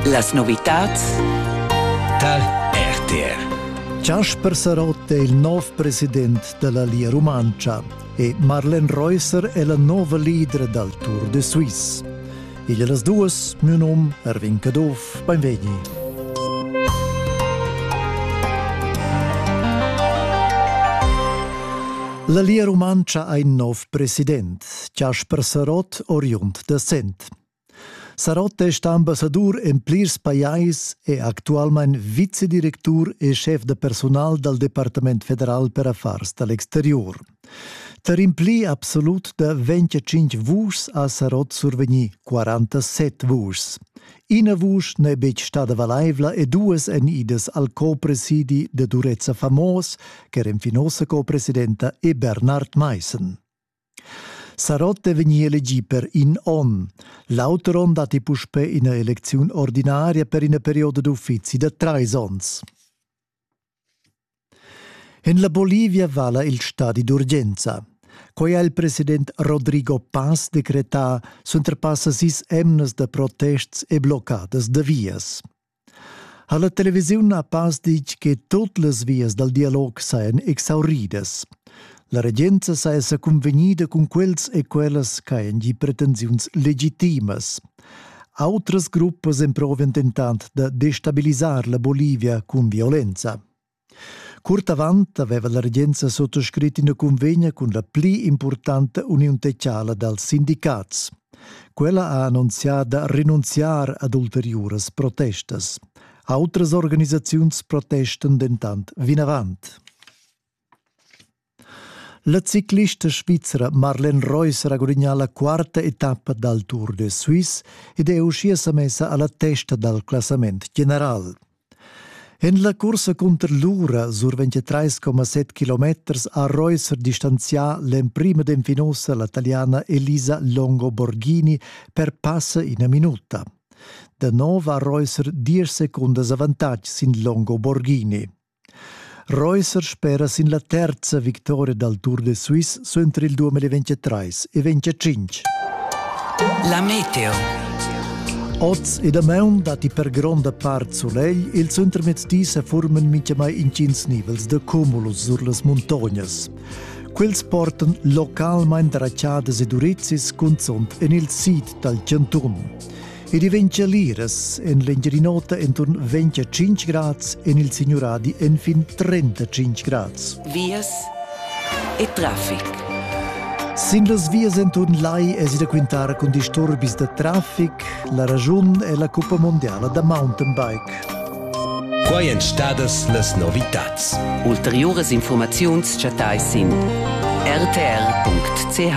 Las novitads dal RTR. Jasper Sarotta è il nov president della Lia Rumantscha e Marlen Reusser è la nova leader dal Tour de Suisse. Igl las duas, mio num Erwin Caduff, benvegni. La Lia Rumantscha ha in nov president, Jasper Sarott, oriund da Sent. Sarott è stà ambassadur en plirs pajais e actualmain vicedirectur e schef da personal dal Departament federal per affars da l'exterior. Per impli absolut da 25 vuschs ha Sarott survegnì 47 vuschs. Ina vusch n'è betg stada valaivla e duas èn idas al co-presidi da Durezza Famos, ch'era fin ossa co-presidenta, e Bernard Meissen. Sarott è vegnì elegì per in onn. L'auter onn datti puspè ina elecziun ordinaria per ina perioda d'uffizi da trais onns. En la Bolivia vala il stadi d'urgenza. Quai ha il president Rodrigo Paz decretà suenter passa sis emnas da protests e bloccadas da vias. ha la televisiun a pass ditg che tut las vias dal dialog sajan exauridas. La regenza saja cunvegnida cun quels e quellas ch'hajan gì pretensiuns legitimas. Autras gruppas emprovan dentant da destabilisar la Bolivia cun violenza. Curt avant aveva la regenza sottoscrit ina cunvegna cun la pli impurtanta uniun techiala dals sindicats. Quella ha annunzià da renunziar ad ulteriuras protestas. Autras organisaziuns protestan dentant vinavant. La ciclista svizra Marlene Reus ha gudagnà la quarta etappa dal Tour de Suisse ed è uschia sa messa a la testa dal classament general. En la cursa cunter l'ura survegn 3,7 km ha Reus distanzià l'emprima denfinosa la taliana Elisa Longo-Borghini per passa ina minuta. Da nov ha Reus diesch secundas avantatg sin Longo-Borghini. Reusser spera sin la terza victoria dal Tour de Suisse suenter il 2023 e 25. La meteo. Oz e damaun datti per gronda part sulegl, il suentermezdi sa forman mintgamai intgins nivels da cumulus sur las muntognas. Quels portan localmain drachadas ed urizis cunzunt en il sid dal chantun. ed i ventscha liras en l'Engiadin'Ota enturn 25 grads en il Signuradi enfin 35 grads. Vias e traffic. Sin las vias enturn lai es da quintar cun disturbis da traffic. La ragiun è la cuppa mondiala da mountainbike. Quai èn stadas las novitads. Ulteriuras informaziuns chattais sin rtr.ch.